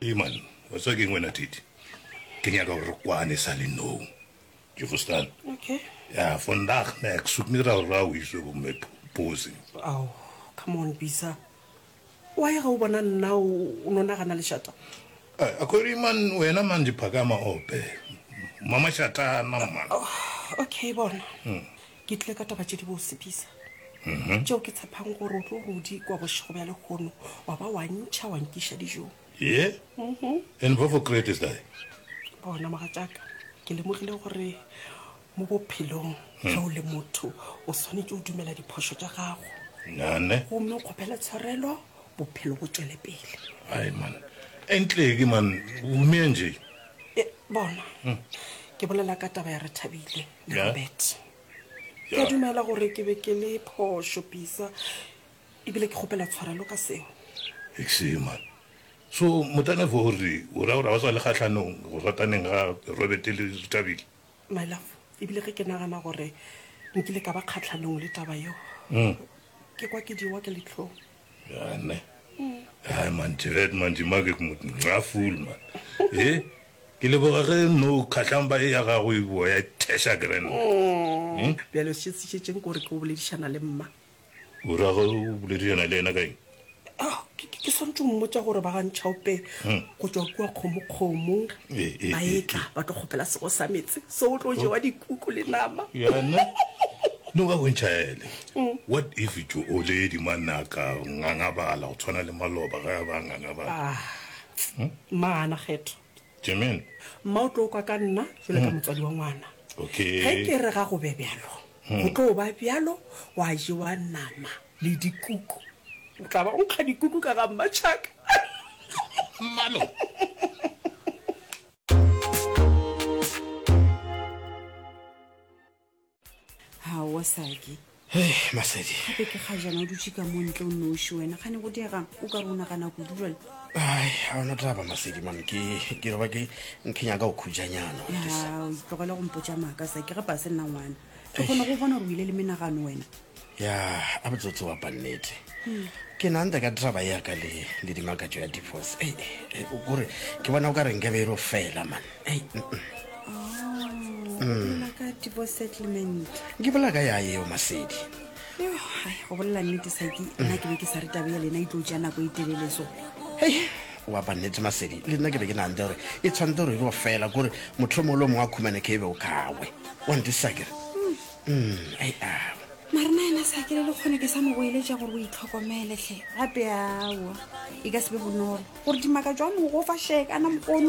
Iman, wa tswa ke ngwena tete ke nyaka gore kwane sa le no ke fostan okay ya vandag ne ek soek nie dat rou is op my pose ao come on bisa wa ye ga o bona nna o no nagana lešata eh, a kore iman wena man diphakama ope mama shatana man oh, okay bona hmm. Ke tle ka taba tše di bose, Bisa. Mhm. Tšeo ke tshepang gore o tlo rudi kwa bošego bja lekgono, wa ba wa ntšha wa nkiša dijong. Ye? Mhm. And what for crate is that? Bona, mogatšaka, ke lemogile gore mo bophelong Hmm. ge o le motho o swanetše o dumela diphošo tša gago Nane? gomme o kgopele tshwarelo bophelo bo tšwele pele Ai, man. Entle ke, man. Humea nje. E, bona Hmm. ke bolela ka taba ya re thabile Robert, ke a dumela gore ke be ke le phošo pisa ebile ke kgopela tshwarelo ka seo Exema, so motanefo o re o ra gore ga o sa le kgahlanong go rataneng ga Robert le Tabile? my love ebile ge ke nagana gore nkile ka ba kgatlhanong le taba yeo ke kwa ke diwa ke letlhong Yane. Hai man, Jared man, di make ke motho nxa fool man. Eh, ke le boga ge no khatlhang ba e ya gago e boa ya thesha ke rena. Hmm? Bjale se se šetšeng gore ke o boledišana le mma. O ra go boledišana le yena ka eng? Ah, ke ke- ke swantse o mmotsa gore ba ga ntšhaope Hmm. go tswa kua kgomokgomo Eh, eh, ba eh, etla ba tlo kgopela sego sa metse so o tlo jewa dikuku le nama Yane. No ba bontšha ele. What if Jooledi mo a nna a ka ngangabala go tshwana le Maloba ge a ba a ngangabala? Ah, mmaana Kgetho. Jermain. Mma o tlo kwa ka nna bjalo ka motswadi wa ngwana. Okay. Ge ke re ga go be bjalo, go tlo ba bjalo, gwa jewa nama le dikuku. O tla ba o nkga dikuku ka ga mmatšhaka. Mmaloba. ga wa saki masedi gape ke ga jana o dutse ka mo ntle o noši wena gane go diegang o ka re o nagana kudu jale ai ga ona taba masedi man ke ke re ba ke nkenya ka go khujanyana tlogele gompotsa maaka sa ke ge pa se nna ngwana ke kgone go bona gore o ile le menagano wena ya a botsotsi wa pannete ke nanta ka draba ya ka le le dimakatso ya divorce ei ei, o kore ke bona o ka reng ke be e ro fela man ei mm, mm. Oh, la ka tipo settlement ke bola ka ya eo masedi Yo, hai, go bolela nnete saki nna ke be ke sa re tabe ya lena e tlo tšea nako e telele so hei wa pannete masedi le nna ke be ke nanta gore e tshwanetse gore e ro fela kore motlho mongwe le o mongwe a khumane ke e be o kawe wa ntisa kere Mm, ai a. Mare na yena sa ke le lekgone ke sa mo goeletša gore o itlhokomele hle. Gape aowa, e ka se be bonolo gore dimaka jwa mogofa shekana mpono.